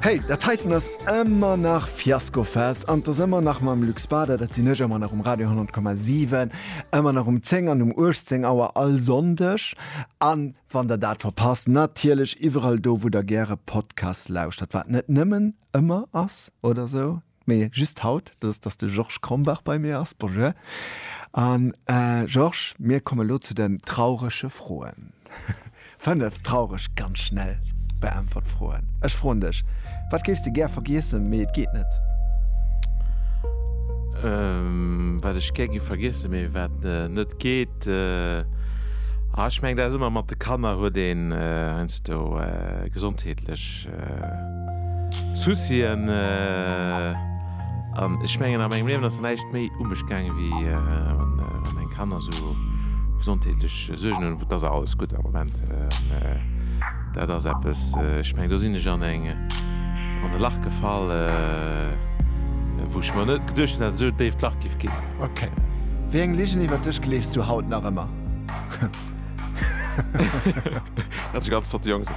Hey, dat heiten ass ëmmer nach Fiaskofest an 't ass ëmmer nach mam Luc Spada, dat sinn ech, ëmmer nach um Radio 100,7, ëmmer nach um 10 an um 18 Auer all Sonndeg an wann der dat verpasst, natierlech iwwerall do wou der gäre Podcast lauschtert, wat net nëmmen ëmmer ass oder sou. Mee just haut, dat ass, dass de Georges Krombach bei mir ass. Bonjour. A Georges, mir kommen elo zu den traurege Froen. Fënnef traureg, ganz schnell beäntwert Froen. Ech froen dech, Wat géifs de gär vergiessen, mee et geet net? Wat ech gär géif vergiessen, mee wat net geet? Ech mengen, dat ass ëmmer mat de Kanner, huet een heiansdo gesondheetlech. Soucien an ech mengen a mengem Liewen ass näischt méi u mech gaangen, wéi wann eng Kanner esou gesondheetlech Suergen hunn. Et ass alles gutt am Moment. Dat ass eppes, ech meng do sinn ech an eng, an e Lach gefall, wou ech mer net geduecht hunn, dat et esou e déift Lach géif ginn. Ok. Wéi eng Ligen iwwert dech gleefs du haut nach ëmmer? Dat ganz flott Jongs.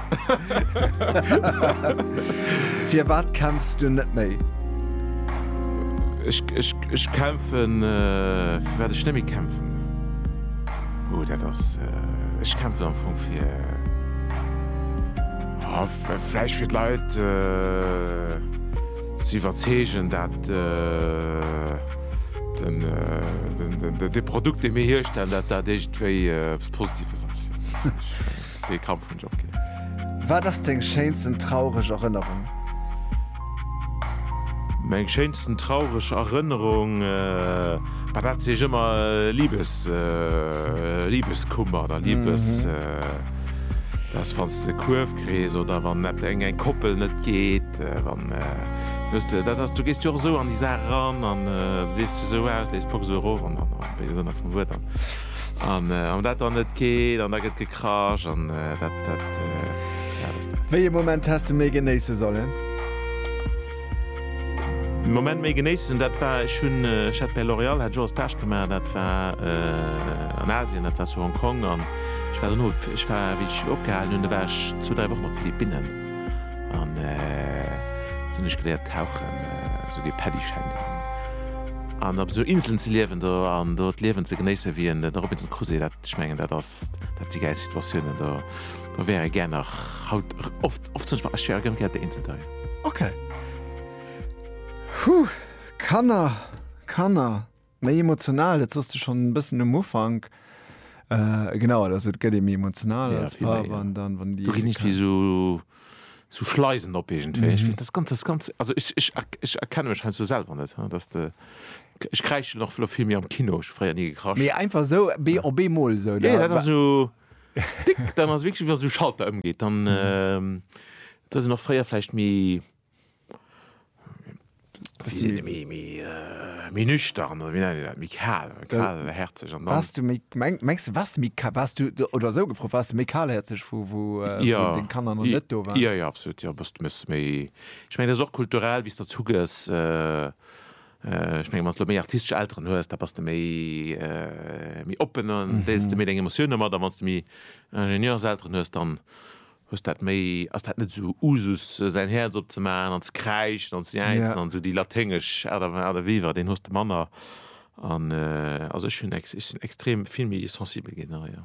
Fir wat kämpfs du net méi? Ech kämpfen äh, fir wat ech net méi kämpfen. Oh dat ass äh, ech kämpfen am Fong fir oh, Fläich fir d'Leit äh, ze iwwerzeegen dat. Äh, De Produkt, dee mir hierstellen, dat dat iergendwéi eppes Positives ass. Dee Kampf hunn ech och gär. Wat ass deng schéinsten traureg Erënnerung? Meng schéinsten traureg Erënnerung, bah, dat si ech ëmmer Liebes, Liebeskummer oder Liebes, dat ass wann s de Kuerf. Frëndeskrees oder wann net eng eng Koppel net geet wann just dat ass du gest jo sou an die Sa ran an wees du sou aus lees Box euro an dann vum Wuert an an an dat an net geet an da gëtt gekrasch an dat dat. Wéi e Moment häss de méi genéisse sollen? Moment méi genéissen, dat war ech hunn ech hat bei L'Oréal hat ech och e Stage gemaach, dat war an Asien, dat war zu Hong Kong an ech war dono ech war wéi ech opgehalen hunn, do war ech zwou, dräi Wochen op Philippinnen an do hunn ech geléiert tauchen, esou dee Paddyschäin do hunn an op esou Inselen ze liewen do an do d'Liewen ze genéissen, wéi een de Robinson Crusoe, dat ech mengen dat ass dat si gäil Situatiounen do. Da wäre gär nach haut oft oft zum Beispill, ech wäre gern gär de Inselteich. Ok. Huh, Kanner, Kanner, méi emotional, dat sooss de schonn e bëssen um Ufank. Genau, also et gëtt ee méi emotional als Papp an dann, wann déi. Do ginn ech wéi esou esou Schleisen op iergendwéi. Ech fir dat ganz, dat ganz, also ech ech ech erkenne mech heiansdo selwer net, dass de, ech kräischen och vëlo vill méi am Kino, ech hu fréier ni gekrasch. Mee einfach esou, op eemol esou, oder? Jo, jo, dat ass esou. Déck, dann ass wierklech wann esou Schalter ëmgeet, dann et huet en och fréier vläicht méi méi nüchtern oder wéi nennt een dat, méi kal, kalhärzeg an dann. Waars du méi, mengs du waars méi ka, waars du, oder esou gefrot, waars du méi kalhärzeg vu wou deng Kanner nach net do waren? Jo, jo, absolut, jo, bass du méi, ech mengen dat ass och kulturell wéi s de erzugëss. Ech mengen, wann s de méi artistesch Elteren hues, da bass de méi, méi oppen an deels de méi deng Emotiounen mat. A wann s de méi Ingenieurselteren hues, dann hues de dat méi, ass dat net esou Usus, säin Häerz opzemaachen an ze kräischen an ze jäizen. An esou déi laténgesch Aart a Wee, war deen hues de manner. An also ech hunn, ech sinn extrem vill méi sensibel ginn, jo.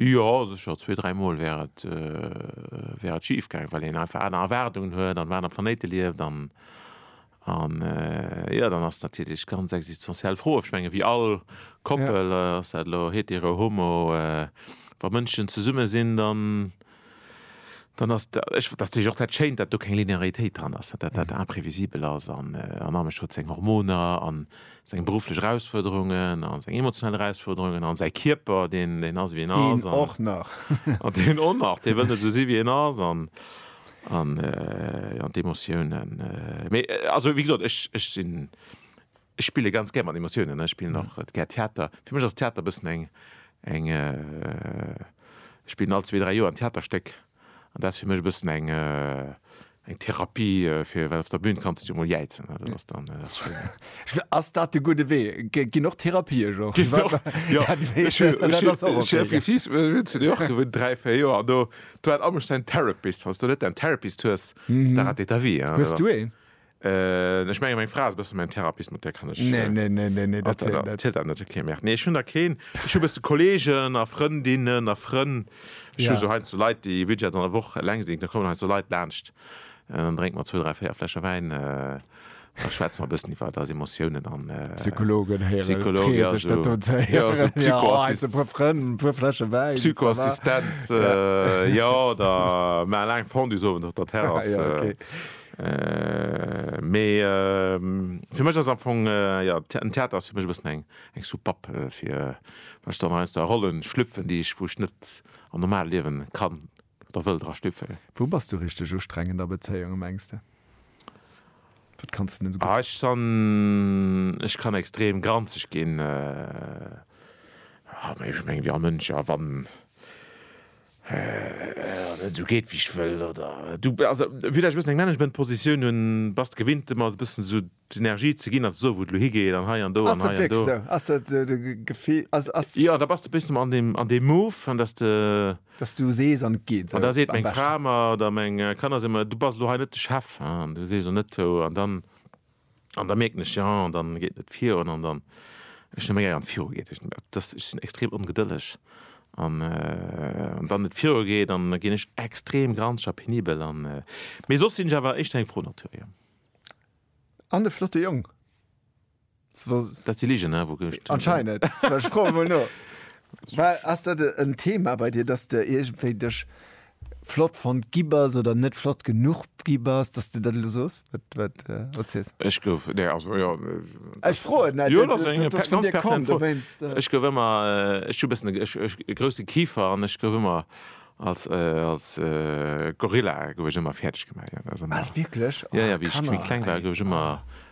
Jo, sécher, zwee, dräi Mol wär et, wär et schif gaang, well een einfach aner Erwaardungen huet an op anere Planéite lieft an, an, jo, dann ass natierlech ganz existenziell Fro, ech menge wéi all Koppel, ass dat elo hetero, homo, wa Mënschen zesumme sinn, dann. dann ass da, ech, dat ass natierlech och dat Schéint, datt do keng Linearitéit dran ass, datt dat imprévisibel ass an en Amesch huet seng Hormoner an seng berufflech Erausfuerderungen an seng emotional Erausfuerderungen an säi Kierper, deen, deen ass, wéi en ass, Deen och nach. an deen och nach, dee wëll net esou sinn, wéi en ass an, an, jo, an d'Emotiounen, mee also wéi gesot, ech, ech sinn. Ech spille ganz gär mat Emotiounen, ech spillen och gär Theater. Fir mech ass Theater e bëssen eng, eng, ech spillen all zwee, dräi Joer en Theaterstéck an dat ass fir mech e bëssen eng, eng Therapie fir, well op der Bün kanns du emol jäizen, dat ass dann, dat ass schéin. Ass dat de gudde Wee? Ginn och Therapie jo. Dräi, véier Joer do hat all mech säin Therapist. Wann s du net däin Therapist hues, da ratéiert ta vie. Hues du een? Äh, ech menge meng Fra ass e bësse mäin Therapist, mat där kann ech. Nee, nee, nee, nee, nee, dat zielt net. Zielt dat net? Ok, merde. Nee, ech hunn der keen. Ech hu bësse Kolleegen a Frëndinnen a Frënn. Ech hu sou heiansdo sou Leit, déi wierklech an der Woch eleng sinn. Da kommen heiansdo Leit laanscht, dann drénke mer zwou, dräi, véier Fläsche Wäin, da schwätze mer e bëssen iwwer eis Emotiounen an. Psychologen héieren. Psychologen, jo. Freeë sech dat do ze héieren. Jo, esou Psycho. Jo, heiansdo e puer Frënn, e puer Fläsche Wäin. Psychoassistenz, jo, oder maache laang Fondue-Sowend op der Terrass. Ah ja, ok. Mee fir mech ass am Fong, jo, den Theater ass fir mech e bëssen eng Soupapp fir, wann ech dann aus der Rolle schlüpfen, déi ech, wou ech net am normale Liewen kann oder wëll dra schlüpfen. Wou bass du richteg ustrengend a Bezéiunge mengs de? Wat kanns de net esou gutt? Ech san, ech kann extrem granzeg ginn. Ech mengen, wéi all Mënsch, a wann Du geet wéi ech wëll oder du also village e bëssen eng Managementpositioun hunn, bass de gewinnt ëmmer e bëssen esou d'Energie ze ginn an ze soen wou et elo higeet an hei an do an hei an do. Ass dat wierklech esou? Ass dat de Gefill? Ass ass. Jo, da bass de e bëssen an deem an deem Move an datt de. Datt du sees an et geet esou am beschten. An da seet meng Fra mer oder meng Kanner si mer, du bass elo hei net de Chef, hein, an du sees elo net an dann. An da mierken ech, jo, an dann geet net virun, an dann, ech hunn e méi gär wann et viru geet, ech sinn extrem ongedëlleg, an wann et viru geet, dann ginn ech extrem granzeg a penibel, an mee soss sinn ech awer éischter eng fro Natur, jo. An e flotte Jong. Dat si Ligen, ne? Anscheinend, ech froen emol no. Ass dat en Thema bei dir, dass de iergendwéi dech flott fonnt gi bass oder net flott genuch gi bass, datt s de dat elo sos, wat, wat, wat s de sos? Ech gouf, nee, also, jo, Ech froen net, jo, dat ass eng ganz pertinent Fro, dowéinst, jo. Ech gouf ëmmer, ech hu e bëssen e, ech, ech, e grousse Kifer an ech gouf ëmmer als, als Gorilla gouf ech ëmmer fäerdeg gemaach, jo, dat ass ëmmer. Wat, wierklech? Oh, Kanner, ey. Jo, jo, wéi ech, wéi ech kleng war, gouf ech ëmmer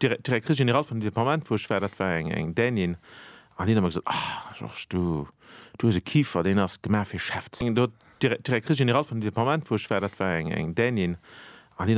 D'Directrice générale vun deem Departement, wou ech war, dat war eng Dänin, an déi huet ëmmer gesot, Ah, Georges, du, du hues e Kifer, deen ass gemaach fir Chef ze sinn. D'Directrice générale vun deem Departement, wou ech war, dat war eng Dänin, an déi.